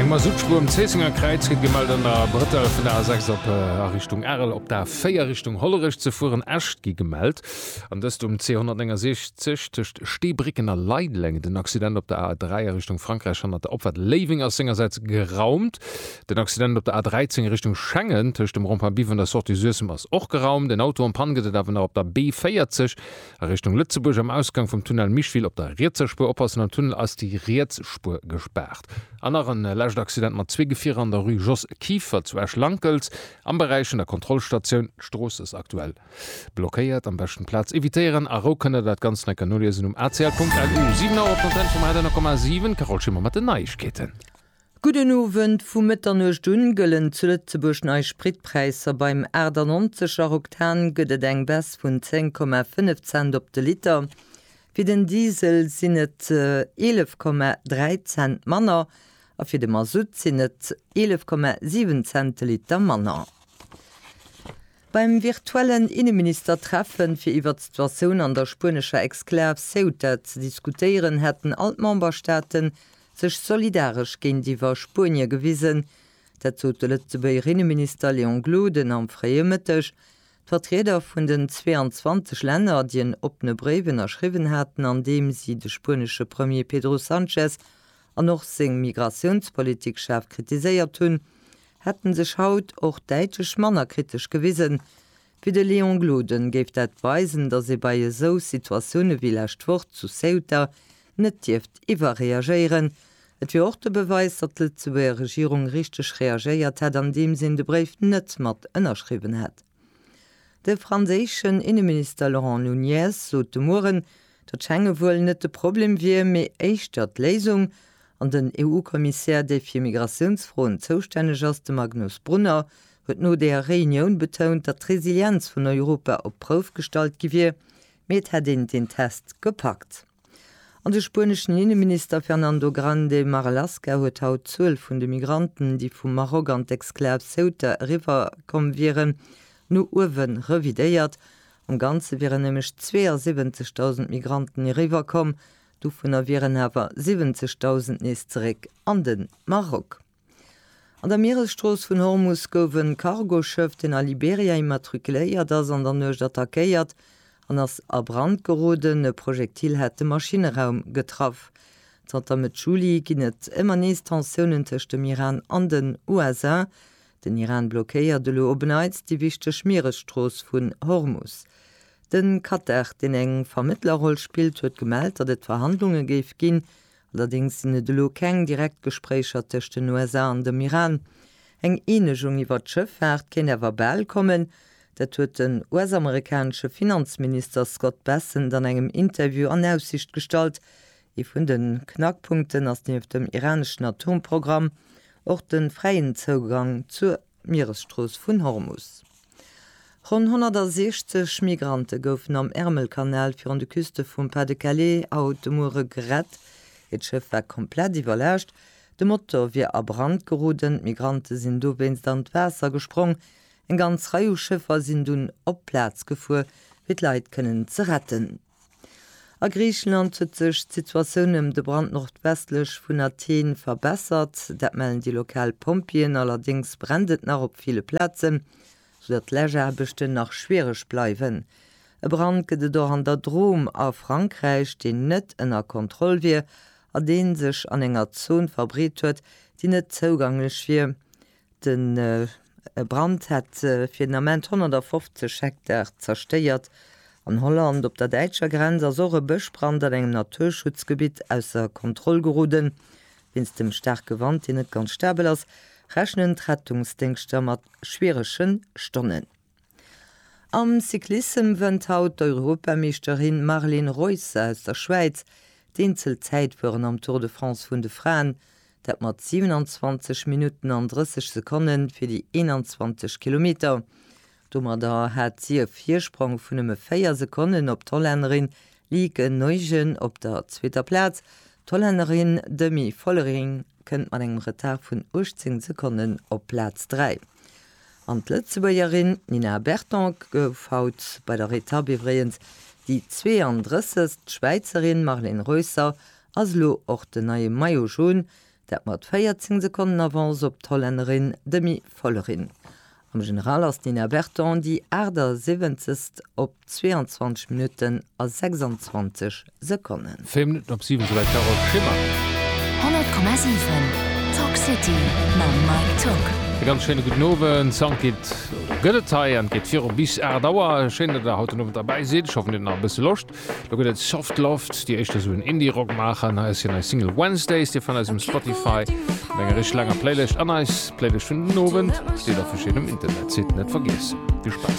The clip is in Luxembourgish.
Eng Masuttspuer um Zéissenger Kräiz gëtt gemellt an der Brëttel vun der A 6 op a Richtung Arel, op der A 4 Richtung Hollerech ze fueren. Äscht gi gemellt an dëst um C 169 tëscht Steebrécken a Leideleng. Den Accident op der A 3 a Richtung Frankräich hannert der Opfahrt Léiweng ass sengersäits geraumt. Den Accident op der A 13 Richtung Schengen tëscht dem Rond-point Biwen der Sortie Suessem ass och geraumt. En Auto am Pann gëtt et awer nach op der B 40 A Richtung Lëtzebuerg am Ausgang vum Tunnel Micheville op der rietser Spuer oppassen, am Tunnel ass déi riets Spuer gespaart. An nach en lescht Accident mat zwee Gefierer an der Rue Jos Kieffer zu Esch-Lankelz am Beräich vun der Kontrollstatioun. D'Strooss ass aktuell blockéiert. Am beschten Plaz evitéieren. A Rou kënnt der dat Ganzt nach eng Kéier noliesen um acl.lu. 7 Auer op d'Antenne vum Radionull Komma 7, Carole Schimmer mat den Neiegkeeten. Gudden Owend, Vu Mëtternuecht un gëllen zu Lëtzebuerg nei Spritpräisser. Beim 98 er Oktan gëtt et eng Baisse vun 10,5 Cent op de Liter. Fir den Diesel sinn et 11,3 Cent manner a fir de Masutt sinn et 11,7 Cent de Liter manner. Beim virtuellen Inneministertreffen, fir iwwert d'Situatioun an der spuenescher Exklav Ceuta ze diskutéieren, hätten all d'Memberstaaten sech solidaresch géintiwwer Spuenie gewisen. Dat sot de Lëtzebuerger Inneminister Léon Gloden am fréie Mëtteg. D'Vertrieder vun den 22 Länner, déi en oppene Bréif ënnerschriwwen haten, an deem si de spuenesche Premier Pedro Sanchez an och seng Migratiounspolitik schaarf kritiséiert hunn, hätte sech haut och däitlech manner kritesch gewisen, Fir de Léon Gloden géif dat weisen, datt ee bei esou Situatioune wéi lescht Woch zu Ceuta net dierft iwwerreagéieren. Et wier och de Beweis, datt d'Lëtzebuerger Regierung richteg reagéiert hätt, andeems een de Bréif net mat ënnerschriwwen hätt. De franséischen Inneminister Laurent Nunez sot de Mueren, datt Schengen wuel net de Problem wier, mee éischter d'Léisung. An den EU-Kommissär, dee fir Migratiounsfroen zoustänneg ass, de Magnus Brunner, huet no deeër Reunioun betount, datt d'Resilienz vun Europa op d'Prouf gestallt gi wier, mee et hätt een den Test gepackt. An de spueneschen Inneminister Fernando Grande Marlaska huet haut d'Zuel vun de Migranten, déi vum Maroc an d'Exklav Ceuta eriwwer komm wieren, no uewe revidéiert. Am Ganze wieren nämlech 72.000 Migranten eriwwer komm, dovunner wieren awer 70.000 nees zeréck an de Maroc. An der Mieresstrooss vun Hormus gouf e Cargoschëff, deen a Liberia immatrikuléiert ass, an der Nuecht attackéiert an ass a Brand geroden. E Projektil hat de Maschinne-raum getraff. Zanter Mëtt Juli ginn et ëmmer nees Tensiounen tëscht dem Iran an den USA. Den Iran blockéiert elo op en Neits déi wichteg Mieresstrooss vun Hormus. De Katar, deen eng Vermëttlerroll spillt, huet gemellt, datt et Verhandlunge géif ginn, Allerdéngs sinn et elo keng direkt Gespréicher tëscht den USA an dem Iran. Eng Eenegung iwwer d'Schëffaart kéint awer bal kommen. Dat huet den US-amerikanesche Finanzminister Scott Bessent an engem Interview an Aussicht gestallt. Ee vun de Knackpunkten ass nieft dem iraneschen Atomprogramm och de fräien Zougang zur Mieresstrooss vun Hormus. Ronn 160 Migrante goufen am Ärmelkanal virun de Küste vum Pas-de-Calais haut de Muere gerett. Hiert Schëff war komplett iwwerlaascht, de Motor wier a Brand geroden. D'Migrante sinn dowéinst an d'Waasser gesprong. Eng ganz Rei u Schëffer sinn dunn op d'Plaz gefuer, fir d'Leit kënnen ze retten. A Griichenland huet sech d'Situatioun ëm de Brand nordwestlech vun Athen verbessert. Dat mellen déi lokal Pompjeeën. Allerdéngs brennt et nach op ville Plazen, soudatt d'Läschaarbechten nach schwiereg bleiwen. E Brand gëtt et och an der Drôme a Frankräich, deen net ënner Kontroll wier a dee sech an enger Zon verbreet huet, déi net zouganglech wier De Brand hat fir den Ament 150 Hektar zerstéiert. An Holland op der däitscher Grenz ass och e Bëschbrand an engem Naturschutzgebitt ausser Kontroll geroden. Wéinst dem staarke Wand, deen net ganz stabel ass, rechnen d'Rettungsdéngschter mat schwierege Stonnen. Am Cyclissem wënnt haut d'Europameeschterin Marlen Reusser aus der Schwäiz d'Eenzelzäitfueren am Tour de France vun de Fraen, dat mat 27 Minutten an 30 Sekonne fir déi 21 Kilometer. Domadder hat si e Virsprong vun nëmme 4 Sekonnen op d'Hollännerin Lieke Nuygen op der zweeter Plaz. D'Hollännerin Demi Vollering kënnt mat engem Retard vun 18 Sekonnen op Plaz 3. An d'Lëtzebuergerin Nina Berton gouf haut bei der Etapp iwwregens déi 32. D'Schwäizerin Marlen Reusser ass elo och den neie Maillot Jaune, dat mat 14 Sekonnen Avance op d'Hollännerin Demi Vollering. Am General ass d'Nina Berton déi 78. op 22 Minutten a 26 Sekonnen. 4 Minutten op 7 esouwäit d'Carole Schimmer. 100,7 Talk City mam Mike Tock. E ganz schéine gudden Owend. Sound geet, oder gëtt et hei, an et geet viru bis 8 Auer. Schéin, datt der haut den Owend derbäi sidd. Ech hoffen dir hutt nach e bësse Loscht. Lo gëtt et Soft Loft, déi éischt esou en Indie Rock maachen. Hei ass hir nei Single Wednesdays. Dir fannt eis um Spotify mat enger richteg laanger Playlëscht an eis Playlëscht vun den Owend steet a verschiddenem Internetsite. Net vergiessen. Vill Spaass.